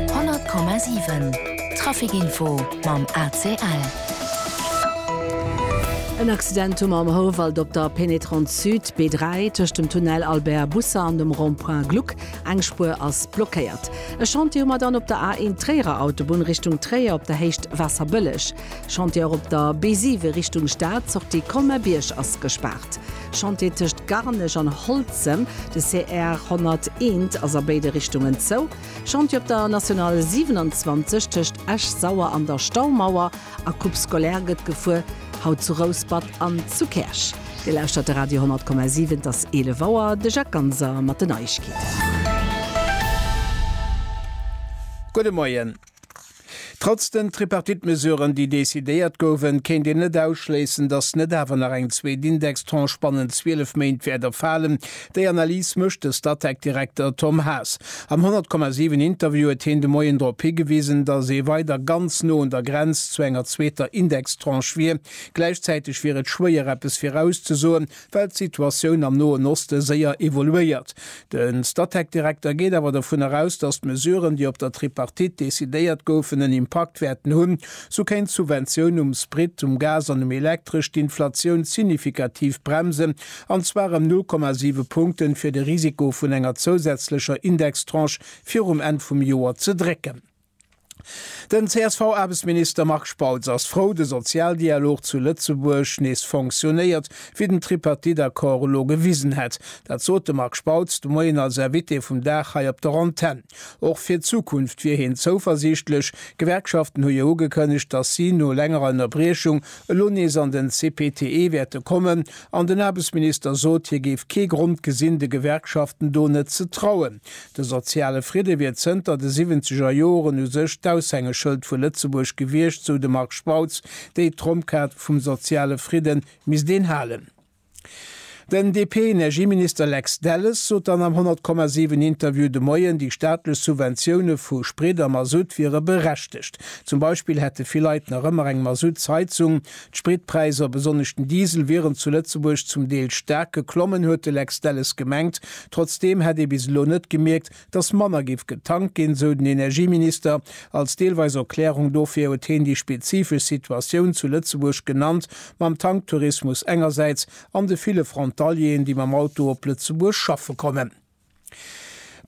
100,7 Traficinfo mam ACL. En Accident hu mer am Houwald op der Pénétrante Sud, B3, tëscht dem Tunnel Albert Bussa an dem Rond-point Gluck. Eng Spuer ass blockéiert. E Chantier hu mer dann op der A1 Tréierer Autobunn Richtung Tréier op der Héicht Waasserbëlleg. Chantier och op der B7 Richtung Stad, Sortie Colmer-Bierg ass gespaart. Chantier tëscht Garnech an Holzem, de CR 101, ass a béide Richtungen zou. Chantier op der National 27 tëscht Esch-Sauer an der Staumauer a Coupe scolaire gëtt gefuer, haut zu Rouspert an zu Käerch. Dir lauschtert de Radio 10,7, et ass 11 Auer. De Jacques Ganser mat den Neiegkeeten. Gudde Moien. Trotz den Tripartite-Mesuren, déi decidéiert goufen, kéint een net ausschléissen, datt net awer nach eng zweet Indextranche bannent 12 Méint wäert erfalen. Déi Analys mécht de Statec-Direkter Tom Haas. Am 100,7 Interview huet heen de Moien drop higewisen, datt ee weider ganz no un der Grenz zu enger zweeter Indextranche wier. Gläichzäiteg wier et schwéier, eppes virauszesoen, Well d'Situatioun am Noen Oste séier evoluéiert. De Statec-Direkter geet awer dovun eraus, datt d'Mesuren, déi op der Tripartite decidéiert goufen, en Impakt wäerten hunn. Sou kéint d'Subventioun um Sprit, um Gas an um Elektresch d'Inflatioun signifikativ bremsen, an zwar ëm 0,7 Punkten, fir de Risiko vun enger zousätzlecher Indextranche virum Enn vum Joer ze drécken. Den CSV-Aarbechtsminister Marc Spautz ass frou, de Sozialdialog zu Lëtzebuerg nees fonctionnéiert, wéi den Tripartite-Accord elo gewisen hätt. Dat sot de Marc Spautz de Moien als Invité vum Dag hei op der Antenn. Och fir d'Zukunft wier hien zouversiichtlech. D'Gewerkschaften hu jo ugekënnegt, datt si no längerer Ënnerbriechung elo nees an den CPTE wäerte kommen. An den Aarbechtsminister sot, hie géif kee Grond gesinn, de Gewerkschaften do net ze trauen. De soziale Fridde wier zënter de siwwenzeger Joren u sech d'Aushängeschëld vu Lëtzebuerg gewiescht, sou de Marc Spautz. Déi Tromp-Kaart vum soziale Fridde misst een halen. Den DP-Energieminister Lex Delles sot dann am 100, 7 Interview de Moien, déi staatlech Subventioune vu Sprit a Masutt wiere berechtegt. Zum Beispill hätte vill Leit nach ëmmer eng Masuttsheizung. D'Spritpräisser, besonnesch den Diesel, wieren zu Lëtzebuerg zum Deel staark geklommen, huet de Lex Delles gemengt. Trotzdeem hätt ee bis elo net gemierkt, datt manner géif getankt ginn, sou den Energieminister. Als deelweis Erklärung dofir huet heen déi spezifesch Situatioun zu Lëtzebuerg genannt, mam Tanktourismus engersäits an de ville Frontalieren, déi mam Auto op Lëtzebuerg schaffe kommen.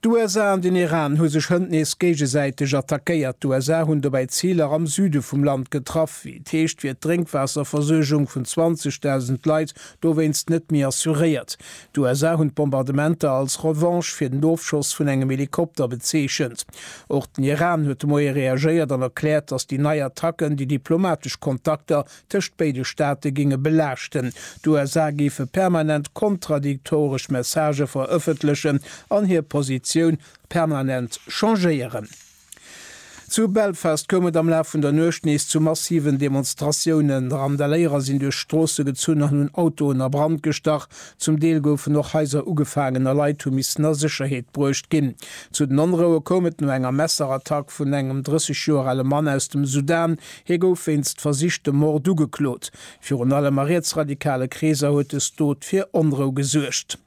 D'USA an den Iran hu sech hënt nees géigesäiteg attackéiert. D'USA hunn dobäi Ziler am Süde vum Land getraff. Wéi et heescht, wier d'Drénkwaasserversuergung vun 20.000 Leit dowéinst net méi assuréiert. D'USA hunn d'Bombardementer als Revanche fir den Ofschoss vun engem Helikopter bezeechent. Och den Iran huet de Moie reagéiert an erkläert, datt déi nei Attacken déi diplomatesch Kontakter tëscht béide Staate géinge belaaschten. D'USA géife permanent kontradiktoresch Messagë verëffentlechen an hir Positioun permanent changéieren. Zu Belfast koum et am Laf vun der Nuecht nees zu massiven Demonstratiounen. Randaléierer sinn duerch d'Stroosse gezunn an hunn Autoen a Brand gestach. Zum Deel goufen och Haiser ugefaangen a Leit hu missen a Sécherheet bruecht ginn. Zu den Onroue koum et no enger Messerattack vun engem 30 Joer ale Mann aus dem Sudan, Hie gouf wéinst versichtem Mord ugeklot. Virun allem a rietsradikale Kreeser huet dës Dot fir Onrou gesuergt.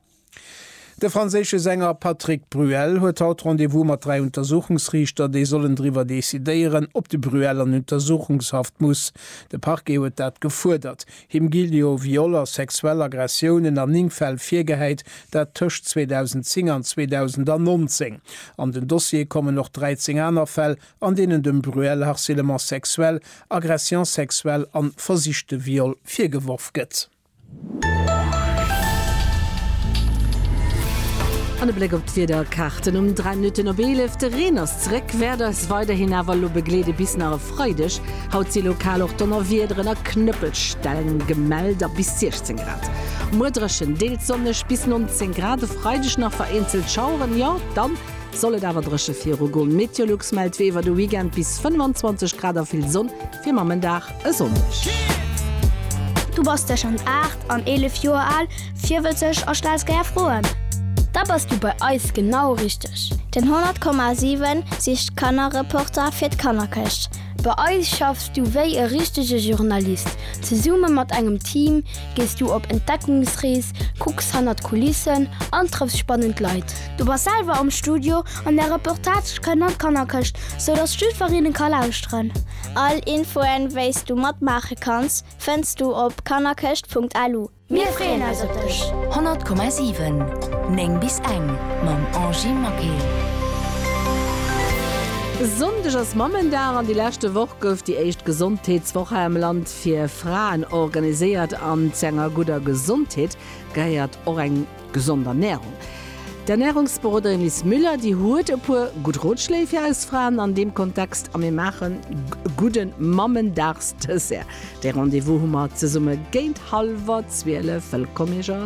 De franséische Sänger Patrick Bruel huet haut Rendez-vous mat dräi Untersuchungsriichter, déi sollen driwwer decidéieren, ob de Bruel an Untersuchungshaft muss. De Parquet huet dat gefuerdert. Him ginn jo Viol a sexuell Aggressiounen an 9 Fäll virgehäit, dat tëscht 2010 an 2019. An den Dossier kommen och 13 aner Fäll, an deenen dem Bruel harcèlement sexuel, agression sexuelle an versichte Viol virgeworf gëtt. An e Bléck op d'Wiederkaarten um 3 Minutten op 11, De Reen ass zeréck, wäert eis weiderhin awer elo begleede bis nach e Freideg. Haut si lokal och Donnerwiederen a Knëppelsteng gemellt a bis 16 Grad. Muer dréchen, deels sonneg bis 19 Grad. E Freideg nach vereenzelt Schaueren, jo dann Soll et awer dréche viru goen? Meteolux mellt wéi iwwer de Weekend bis 25 Grad a vill Sonn fir mam en Dag e Sonndeg. Du bass tëschent 8 an 11 Joer al, virwëtzeg a stells gär Froen? Da bass du bei eis genau richteg! Den 100,7 sicht Kannerreporter fir d'Kannerkëscht. Bei eis schaffs du wéi e richtege Journalist. Zesumme mat engem Team gees du op Entdeckungsrees, kucks hannert d'Kulissen an trëffs spannend Leit. Du bass selwer am Studio an der Reportage kënnt an d'Kannerkëscht, sou datt d'Schüferinnen ka lauschteren. All Infoen, wéi's du matmaache kanns, fënns du op kannerkëscht.lu. Mir freeën eis op dech! 100,7 9 bis eng mam Angie Maquet. E Sonndeg ass Mammendag an déi leschte Woch gouf déi éischt Gesondheetswoch hei am Land fir Fraen organiséiert. An zu enger gudder Gesondheet gehéiert och eng. Gesond Ernährung. D'Ernährungsberoderin Liz Müller, déi huet e puer gutt Rotschléi fir eis Fraen an deem Kontext a mir maachen e gudde Mammendagsdessert. De Rendez-vous hu mer zesumme géint hallwer zwielef. Wëllkomm iech all!